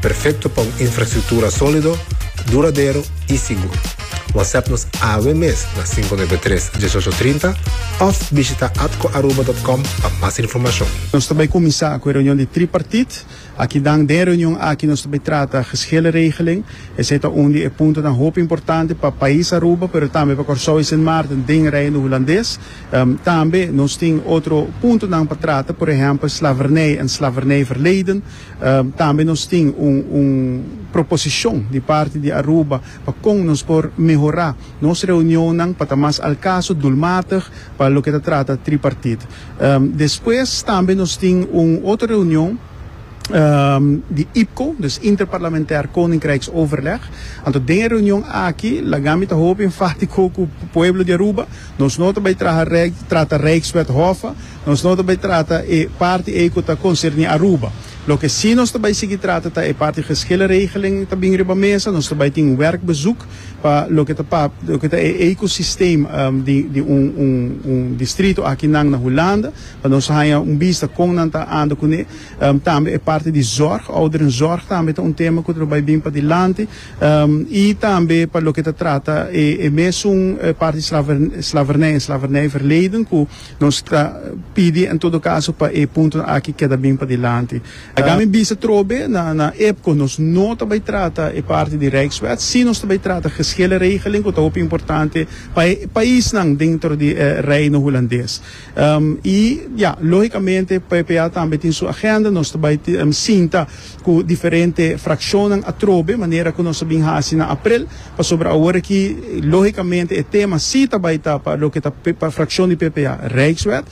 Perfecto pa un infrastructura solido, duradero y sigur. WhatsApp nos awe mes na cinco nuebe tres, dieshocho trinta of bishita atcoaruba.com pa mas informacion. Nos ta bai cuminsa cu e reunion di tripartite. Aki dan den e reunion aki nos ta bai trata geschilleregeling. Esey ta un di e puntonan hopi importante pa pais Aruba pero tambe pa Corsou y Sint Maarten den Reino Hulandes. Tambe nos tin otro puntonan pa trata, por ehempel slavernij en slavernijverleden. Tambe nos tin un un proposicion di parti di Aruba pa con nos por mehora nos reunionnan pa ta mas al caso, doelmatig pa loke ta trata tripartite. Despues tambe nos tin un otro reunion di IPCO, dus Interparlamentair Koninkrijks Overleg. Anto den e reunion aki Lagami ta hopi enfatico cu pueblo di Aruba, nos no ta bay traha trata Rijkswet Hof, Nos no ta bay trata e parti ey cu ta concerni Aruba. Loke si nos ta bay sigui trata ta e parti geschillen regeling ta bin riba mesa. Nos ta bay tin un werkbezoek pa loke ta pa loke ta e ecosysteem di di un un un distrito aki nan na Hulanda pa nos haya un bista con nan ta anda cune. Tambe e parti di zorg, ouderenzorg tambe ta un tema cu ta bay bin pa dilanti y tambe pa loke ta trata e e mesun parti slavernij en slavernijverleden cu. Nos ta pidi en todo caso pa e puntonan aki keda bien padilanti. I dame bisa trobe na na epco nos no ta bay trata e parti di Rijkswet, sí nos ta bay trata geschillen regeling cu ta hopi importante pa e paisnan dentro di e Reino Hulandes. I ja, logicamente, PPA tambe tin su agenda, nos ta bay sinta. cu diferente fraccionnan atrobe, manera cu nos a bin haci na aprel, pasobra awor aki, logicamente, e tema si ta bay ta pa loke ta pa fraccion di ppa, Rijkswet,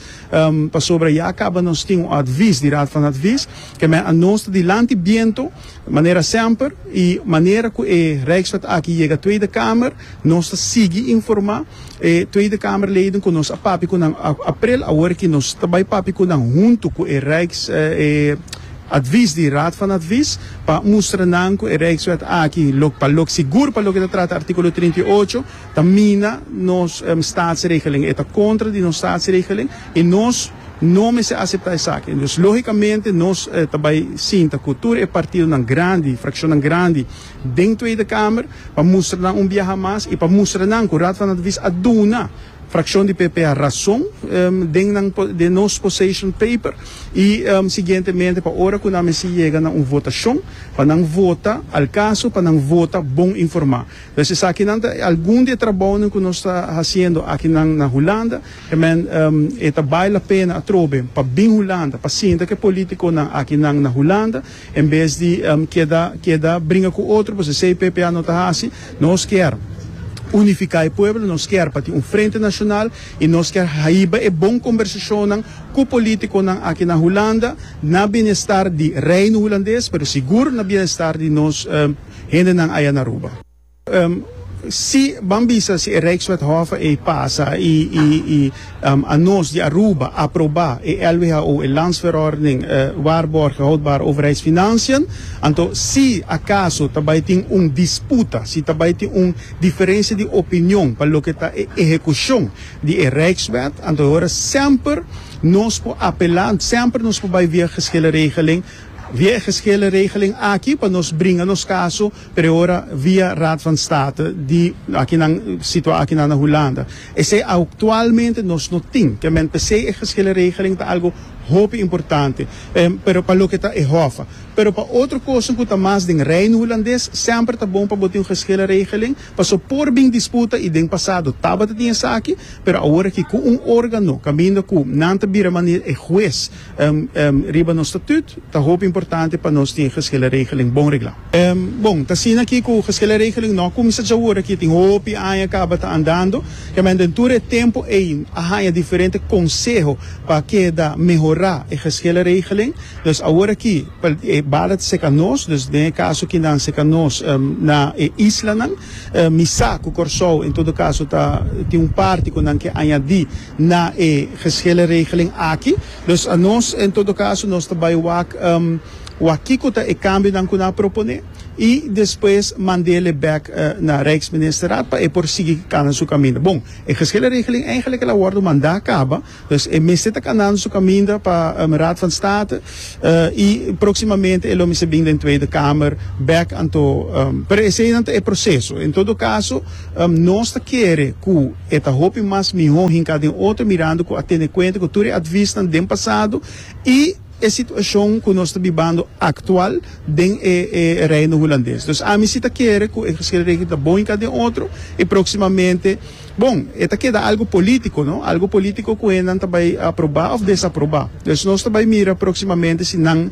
pasobra ya a caba nos tin un advies di Raad van Advies, kemey a nos ta dilanti biento, manera semper, y manera cu e Rijkswet aki yega Tweede Kamer, Nos ta sigui informá e Tweede Kamerleden ku nos a papia ku nan aprel awor aki. Nos ta bai papia ku nan huntu ku e Rijks e advis di Raad van Advies pa mustra nan ku e Rijkswet aki lo pa lo sigur pa loke ta trata artíkulo trinta i ocho ta mina nos Staatsregeling. E ta kontra di nos Staatsregeling i nos no mester aseptá esaki. Dus lógikamente nos ta bai sinta ku tur e partidonan grandi, frakshonnan grandi. den Tweede Kamer pa mustra nan un biaha mas i pa mustra nan ku Raad van Advies a duna frakshon di PP a rason den nan den nos poseshon paper i siguientemente pa ora ku nan mester yega na un votashon pa nan vota al kaso pa nan vota bon informá. Pues esakinan ta algun di e trabounan ku nos ta hasiendo akinan na Hulanda e men e ta bai la pena atrobe pa bin Hulanda pa sinta ku e polítikonan akinan na Hulanda En bes di keda keda bringa ku otro pues esei ppa no ta hasi. Nos kier unifiká e pueblo, nos kier pa tin un frente nashonal i nos kier haiba e bon kombersashonnan ku polítikonan aki na Hulanda na bienestar di Reino Hulandes pero sigur na bienestar di nos hendenan aya na Aruba. Si ban bisa si e Rijkswet Hof ei pasa i i a nos di Aruba aproba e LWHO e Landsverordening Waarborgen Houdbare Overheidsfinanciën, anto si akaso ta bai tin un disputa, si ta bai tin un diferensia di opinion pa loke ta e ehekushon di e Rijkswet, anto e ora semper nos por apelá, semper nos por bai via e Geschillenregeling, via e Geschillenregeling aki pa nos bringa nos kaso. Preora via Raad van State di aki nan situa aki nan na Hulanda. Esei auctualmente nos no tin ke men pesei e geskele regeling ta algo hopi importante, pero pa loke ta e Hof. Pero pa otro kosten ku ta mas den Reino Hulandes semper ta bon pa bo tin un geskele regeling, paso por bin disputa i den pasado tabata tin esaki, pero aworaki ku un organo kaminda ku nan ta bira manera e hues, Riba nos statut ta hopi importante pa nos tin geschillenregeling bon regla. Bon, ta asina aki cu geschillenregeling no a cuminsa djawor aki, tin hopi aña caba ta andando. Kember den tur e tempo ey a haña diferente conseho pa keda mehora e geschillenregeling. Dus awor aki pa e bala ta seca nos, dus den e caso aki nan seca nos na e islanan. Mi sa cu Corsou en todo caso ta tin un parti cu nan ke añadi. na e geshele regeling aki. Dus a nos, en todo caso, nos ta bay wak wak kico ta e cambionan cu nan a propone y despues mandele bek na Rijksministerraad pa e por sigui cana su caminda. Bon, e geshele regeling eigenlijk el a wordo manda caba, dus e mester ta canando su caminda pa Raad van State y proximamente e lo mester bin den Tweede Kamer bek anto, pero eseynan ta e proceso. En todo caso, nos ta kere cu. E ta hopi mas mihó hinká den otro mirando ku a tene kuenta ku tur e advisnan den pasado i e situashon ku nos ta bibando aktual den e Reino Hulandes. Dus ami si ta kere ku e Geschilde Regeling ta bon hinká den otro i próksimamente, bon, e ta keda algu polítiko, no? Algu polítiko ku hennan ta bai aprobá òf desaprobá. Dus nos ta bai mira próksimamente si nan